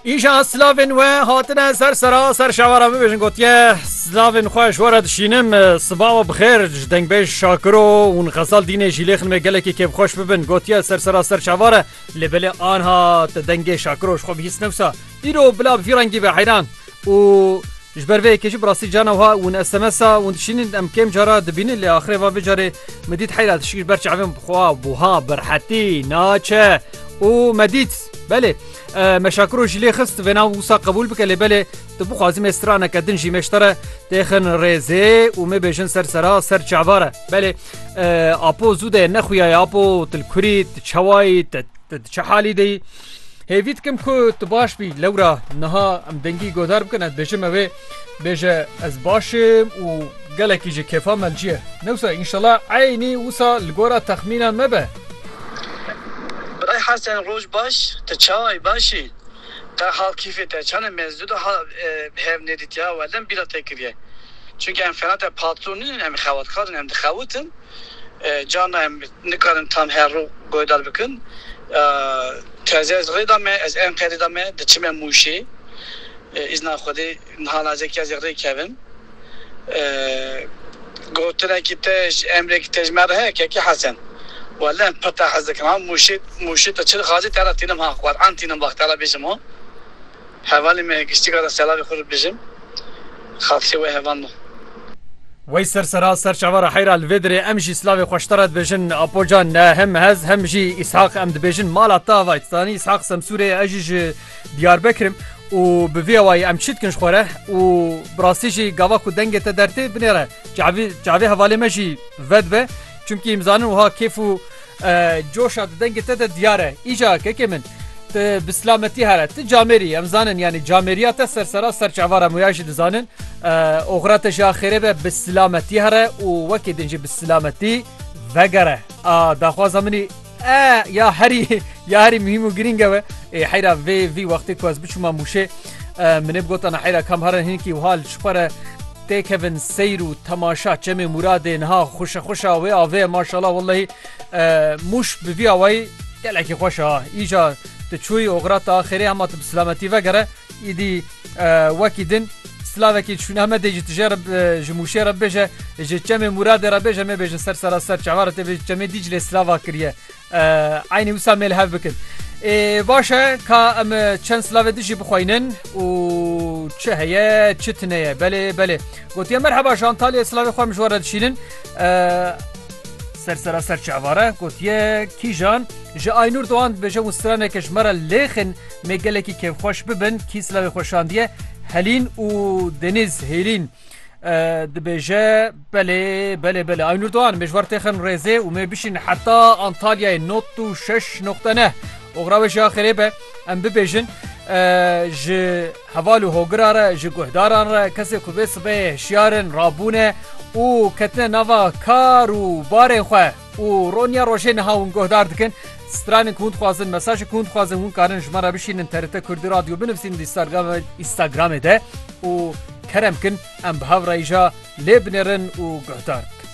Îşa silavên we hatine ser sera ser şewa re bibêjin gotiye silavên xwe ji were dişînim siba we bixêr ji dengbêj şakiro hûn xesal dînê jî lê xinmê gelekê kêfxweş bibin gotiye ser sera ser şewa re lê belê anha te dengê şakiro ji xwe bihîst newsa îro bila bi vî rengî be heyran û ji ber vê kêjî bi rastî cana wiha hûn SMSa hûn dişînin em kêm cara dibînin lê axirê va vê carê min dît heyra dişik ji ber çavên bixwa buha berhetî naçe û me dît belê Meşakiro jî lê xist vê nav wisa qebûl bike lê belê tu bixwazî me straneke din jî meştere têxin rêzê û me bêjin ser sera ser çavare belê apo zû de nexuyaye apo til kurî ti çewayî te çi halî deyî. Hêvî dikim ku tu baş bî lewra niha em dengî godar bikin ez bêjime wê Bêje ez baş im û gelekî ji kêfa me ciye. Ne wisa înşela eynî wisa li gora texmîna me be. Birayê Hesen roj baş, tu çawa baş î? Te hal kîfê te çane me zû de hal bi hev nêdîtiya welem bîra te kiriye. Çunke em fena te patron nîn em xewatkar in em dixewitin carna em nikarin tam her rû guhedar bikin. Teze ez rê da me ez enqerê da me diçime mûşê. Îzna Xwedê, niha lajekî ez ê rê kevim. Gotinekî te ji emrêkî te ji me re heye kekê Hesen. Weleh pir te hez dikim ha mûşê mûşê te çil xazê te re tînim ha Qur'an tînim bax te re bêjim ho. Hevalê me ye giştî kara selavê xwe re bijim. Xatirê we heval me. Wey ser sera ser çava re heyra li vê dirê em jî silavê xweş te re dibêjin Apo can ne hem ez hem jî Îshaq em dibêjin mala te avayt zanî Îshaq Semsûrê ye ez jî ji Diyarbekirim û bi vî awayî em çi dikin ji xwe re û bi rastî jî gava ku dengê te dertê binê re çavî çavê hevalê me jî vedibe çimkî em zanin wiha kêf û coşa di dengê te de diyar e. Îca kekê min tu bi silametî here tu camêrî em zanin yanî camêriya te ser sera ser çava re muya jî dizanin oxira te jî a xêrê be bi silametî here û wekî din jî bi silametî vegere a daxwaza minî. Eee ya herî ya herî muhîm û girîng ew e ê heyra vê vî wextê ku ez biçûma mûşê minê bi gotana heyra kam herin hinkî wiha li şixwe re tê kevin seyr û temaşa çemê Mûradê niha xweşe xweşa wê avê maşala wellehî mûş bi vî awayî gelekî xweş a îca tu çûyî oxira te axêrê hema tu bi silametî vegere îdî wekî din Slavekî çûn Amedê ji tije re ji mûşê re bêje ji çemê Mûradê re bêje me bêjin ser sera ser çawa re tê bêjin çemê Dîclê slava kiriye eynî wisa mêl hev bikin. Ê baş e ka em çend slavê dijî bixweynin û çi heye çi tine ye belê belê gotiye merheba ji Antalyayê slavê xwe mijwar re dişînin ser sera ser çavare gotiye kîjan ji Aynûr Doğan dibêje û straneke ji me re lêxin Me gelekî kêfxweş bibin kîsla wê xwe şandiye Helîn û Denîz Hêlîn dibêje belê belê belê Aynur Doğan me ji war têxin rêzê û me bişîn heta Antalyayê not û şeş noqte ne oxra we ji axirê be em bibêjin ji heval û hogira re ji guhdaran re kesê ku bê sibeyê hişyarin rabûne û ketine nava kar û barê xwe. û roniya rojê niha hûn guhdar dikin stranên ku hûn dixwazin mesajê ku hûn dixwazin hûn karin ji me re bişînin TRT Kurdî Radyo binivîsînin di Instagramê de û kerem kin em bi hevrayîja lê binêrin û guhdar bikin.